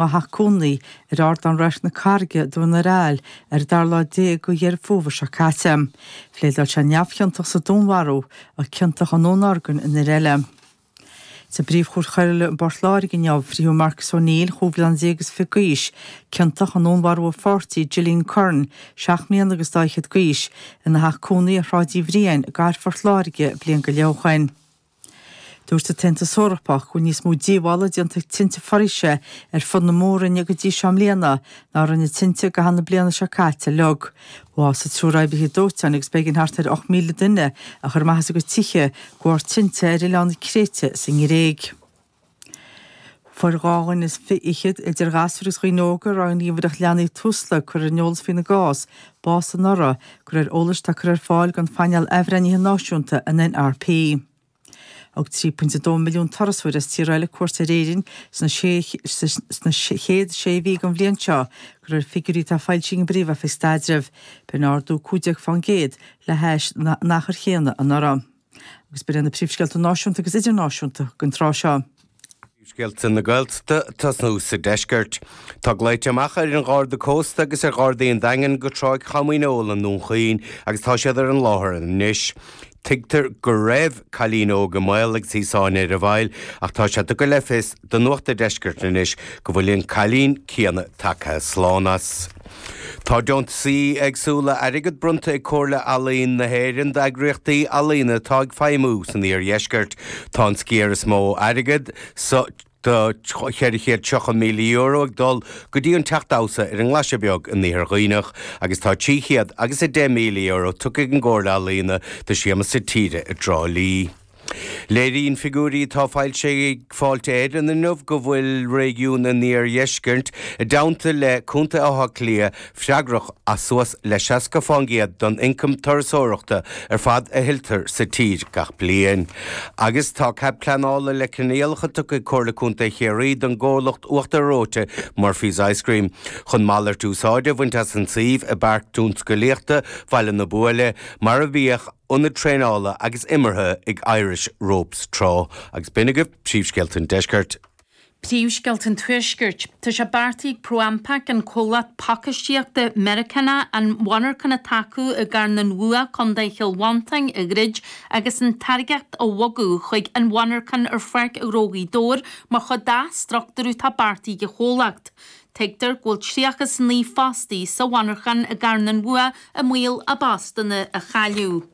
a theach cónaí ar ardán Radharc na Carraige Dún ar Aill ar an dara lá déag de Dheireadh Fómhair seo caite. Phléadáil sé neamhchiontach sa dúnmharú, ach ciontach i ndúnorgain an fhir eile. Sa bPríomhchúirt Choiriúil i bPort Láirge inniu, frítheadh Marcus O'Neill, chúig bhliana déag is fiche d'aois, ciontach i ndúnmharú a pháirtí, Gillian Curran, seacht mbliana agus daichead d'aois, ina theach cónaí ar Shráid Uí Bhriain i gcathair Phort Láirge bliain go leith ó shin. Dúirt an tAontas Eorpach go bhfuil níos mó díobhála déanta ag tinte foraoise ar fud na mór-roinne go dtí seo i mbliana ná a rinne tinte i gcaitheamh na bliana seo caite uilig. Bhásaigh triúr oibrithe dóiteáin agus b'éigean thart ar 8,000 duine a chur amach as a gcuid tithe de bharr tinte ar oileán na Créite sa nGréig. Fuair dhá dhuine is fichead, idir ghasúir agus dhaoine óga, a raibh an ghníomhaireacht leanaí Tusla curtha ar an eolas faoina gcás, bás anuraidh. De réir eolais atá curtha ar fáil ag an phainéal athbhreithnithe náisiúnta, an NRP. Thug 3.2 milliún turasóir as tíortha eile cuairt ar Éirinn sna chéad sé mhí den bhliain seo, de réir figiúirí atá foilsithe ag an bPríomh-Oifig Staidrimh. B'in ardú 15% le hais an achair chéanna anuraidh. Agus b'in iad na Príomhscéalta Náisiúnta agus Idirnáisiúnta don tráth seo. Príomhscéalta na Gaeltachta ag tosnú sa deisceart. Tá glaoite amach ar an Gharda Cósta agus ar Ghardaí an Daingin go Tráigh Chom Dhíneol i nDún Chaoin agus tá siad ar an láthair anois. Tuigtear go raibh cailín óg i mbaol agus í sáinnithe ar an bhfaill ach tá sé tugtha le fios do Nuacht an Deiscirt anois go bhfuil an cailín céanna tagtha slán as. Tá deontasaí éagsúla airgead bronnta ag Comhairle Ealaíon na hÉireann d'eagraíochtaí ealaíona atá ag feidhmiú san iardheisceart. Tá an sciar is mó airgead, €430,000 ag dul go dtí an teach damhsa ar an nGlaise Beag in Iarthar Dhuibhneach agus tá trí chéad agus a deich míle euro tugtha ag an gComhairle Ealaíona do Siamsa Tíre i dTrá Lí. Léiríonn figiúirí atá foilsithe ag Fáilte Éireann inniu go bhfuil réigiún an iardheiscirt, i dteannta le Contae Átha Cliath, freagrach as suas le 60% den ioncam turasóireachta ar fad a thuilltear sa tír gach bliain. Agus tá Cead Pleanála le Coinníollacha tugtha ag Comhairle Contae Chiarraí don gcomhlacht uachtar reoite Murphy's Ice Cream chun malairt úsáide a bhaint as an suíomh i bPáirc Tionscalaíochta Bhaile na Buaile, mar a bhíodh. Ionad Traenála agus Imeartha ag Irish Ropes tráth agus b'in agaibh Príomhscéalta an Deiscirt. Príomhscéalta an Tuaiscirt. Tá sé beartaithe ag ProAmpac, an comhlacht pacáistíochta Meiriceánach, an mhonarchan atá acu i gCarn an Bhua, Contae Chill Mhantáin, a dhruid agus an táirgeacht a bhogadh chuig an mhonarchan ar Pháirc Ghnó Ghaoth Dobhair mar chuid d'athstruchtúrú atá beartaithe ag an chomhlacht. Tuigtear go bhfuil 39 fostaí sa mhonarchan i gCarn an Mhuaidh i mbaol a bpostanna a chailleadh.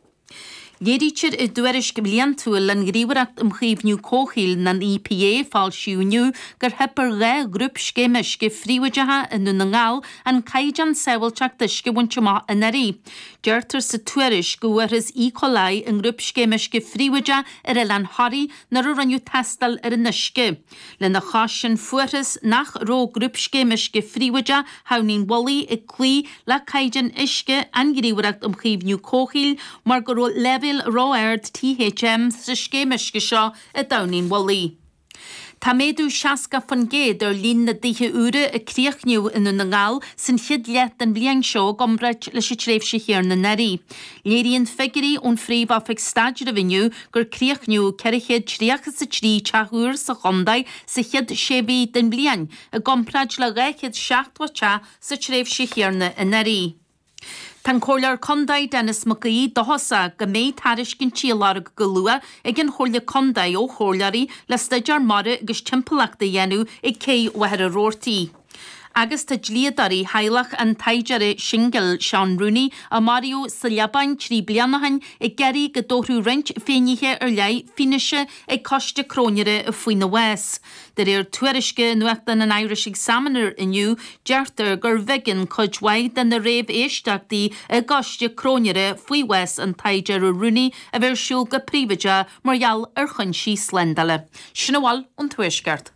Léirítear i dtuairisc bhliantúil an Ghníomhaireacht um Chaomhnú Comhshaoil, an EPA, a foilsíodh inniu gur theip ar dhá ghrúpscéim uisce phríobháideacha i nDún na nGall an caighdeán sábháilteachta uisce a bhaint amach anuraidh. Deirtear sa tuairisc go bhfuarthas E. coli i ngrúpscéim uisce phríobháideach ar oileán Thoraí nuair a rinneadh tástáil ar an uisce. Lena chois sin fuarthas nach raibh Grúpscéim Uisce Phríobháideach Thamhnaigh an Mhullaigh ag cloí le caighdeáin uisce an Ghníomhaireacht um Chaomhnú Comhshaoil mar go raibh leibhéil ró-ard THM sa scéim uisce seo i dTamhnaigh an Mhullaigh. Tá méadú 60% ar líon na dtithe úra a críochnaíodh i nDún na nGall san chéad leath den bhliain seo i gcomparáid leis an tréimhse chéanna anuraidh. Léiríonn figiúirí ón Phríomh-Oifig Staidrimh inniu gur críochnaíodh ceithre chéad tríocha is a trí teach úr sa chontae sa chéad sé mhí den bhliain, i gcomparáid le dhá chéad seachtó teach sa tréimhse chéanna anuraidh. Tá an Comhairleoir Contae Denis Mac Aoidh dóchasach go mbeidh tairiscintí á lorg go luath ag an Chomhairle Contae ó Chomhairleoirí le staidéar mara agus timpeallachta a dhéanamh ag Cé Mhachaire Rabhartaigh. Agus tá dlíodóirí theaghlach an tsaighdiúra shingil Seán Rooney, a maraíodh sa Liobáin trí bliana ó shin, ag iarraidh go dtabharfadh roinnt finnéithe ar leith fianaise ag coiste cróinéara faoina bhás. De réir tuairisce i nuachtán an Irish Examiner inniu, deirtear gurbh éigean cuid mhaith de na réamhéisteachtaí i gcoiste cróinéara faoi bhás an tsaighdiúra Rooney a bheith ar siúl go príobháideach mar gheall ar choinsí slándála. Sin a bhfuil ón Tuaisceart.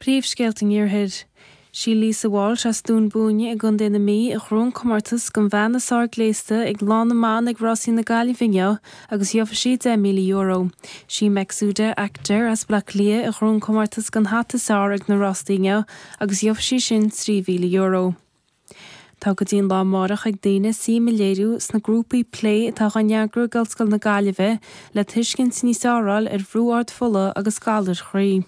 Príomhscéalta an Iarthair. Sí Lisa Walsh as Dún Búinne i gContae na Mí a ghnóthaigh an comórtas don bhean is fearr gléasta ag Lá na mBan ag Rásaí na Gaillimhe inniu agus gheofaidh sí €10,000. Sí Mekzoudi Akter as Baile Átha Cliath a ghnóthaigh an comórtas don hata is fearr ag na rásaí inniu agus gheofaidh sí sin €3,000. Tá go dtí an lá amárach ag daoine suim a léiriú sna grúpaí plé atá á n-eagrú ag Ollscoil na Gaillimhe le tuiscint níos fearr a fháil ar bhrú ard fola agus galair chroí.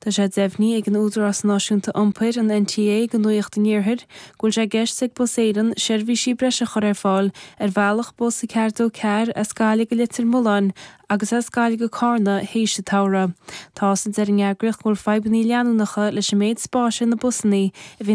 Tá sé deimhnithe ag an Údarás Náisiúnta Iompair, an NTA, go Nuacht an Iarthair go bhfuil sé i gceist ag Bus Éireann seirbhísí breise a chur ar fáil ar bhealach bus a ceathair dó ceathair as Gaillimh go Leitir Mealláin agus as Gaillimh go Carna théis an tsamhraidh. Tá's a'inn a deir an eagraíocht go bhfuil fadhbanna leanúnacha leis an méid spáis ar na busanna a bhíonn